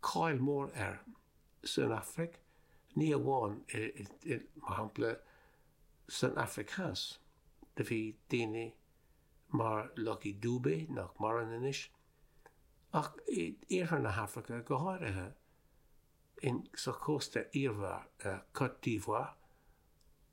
cáil mór air san Afraic, ní amháin i, mar shampla, san Afraic Theas, do bhí daoine mar Lucky Dube, nach maireann anois, ach i iarthar na hAfraice go háirithe, in sa Chósta Eabhair, Cote d'Ivoire,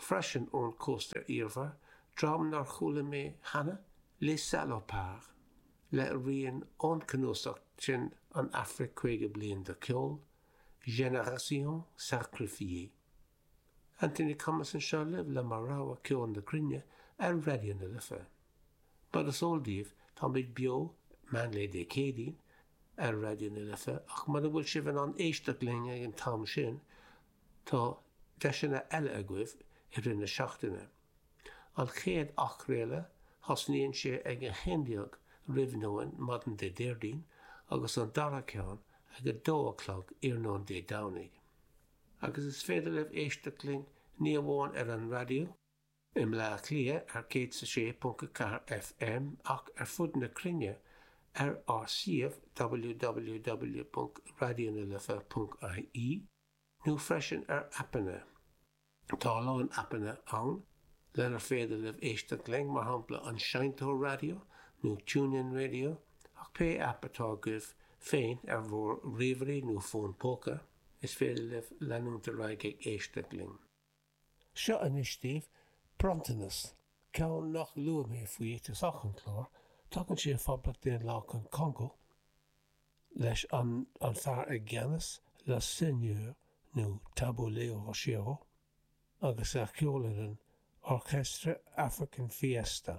freisin ón Cósta Eabhair, dream nár chuala mé cheana, Les Salopards, le rian ón cnuasach sin An Afraic Caoga Bliain de Cheol, Génération Sacrifiée. Anthony Thomas anseo libh le mo rogha ceoil na cruinne ar Raidió na Life. Mar is eol daoibh táimid beo meánlae Dé Céadaoin ar Raidió na Life ach mura bhfuil sibh in ann éisteacht linn ag an t-am sin, Tá deiseanna eile agaibh i rith na seachtaine. An chéad athchraoladh thosnaíonn sé ag 11 roimh nóin maidin Dé Déardaoin agus an dara ceann ag 2 a chlog iarnóin Dé Domhnaigh. Agus is féidir libh éisteacht linn ní amháin ar an raidió i mBleá Cliath ar 106.4 FM ach ar fud na cruinne ar ár suíomh www.raidionalife.ie. nó freisin ar aipeanna. Tá a lán aipeanna ann lenar féidir libh éisteacht linn, mar shampla an Seinnteoir Raidió nó TuneIn Radio, ach pé aip atá agaibh féin ar bhur ríomhairí nó fón póca, is féidir libh leanúint ar aghaidh ag éisteacht linn. Seo anois daoibh bronntanas, ceann nach luaigh mé faoi ag tosach an clár, tagann sé ó Phoblacht Daonlathach an Congó leis an an fear i gceannas, le Seigneur nó Tabu Ley Rochereau agus a cheolann an Orchestre African Fiesta.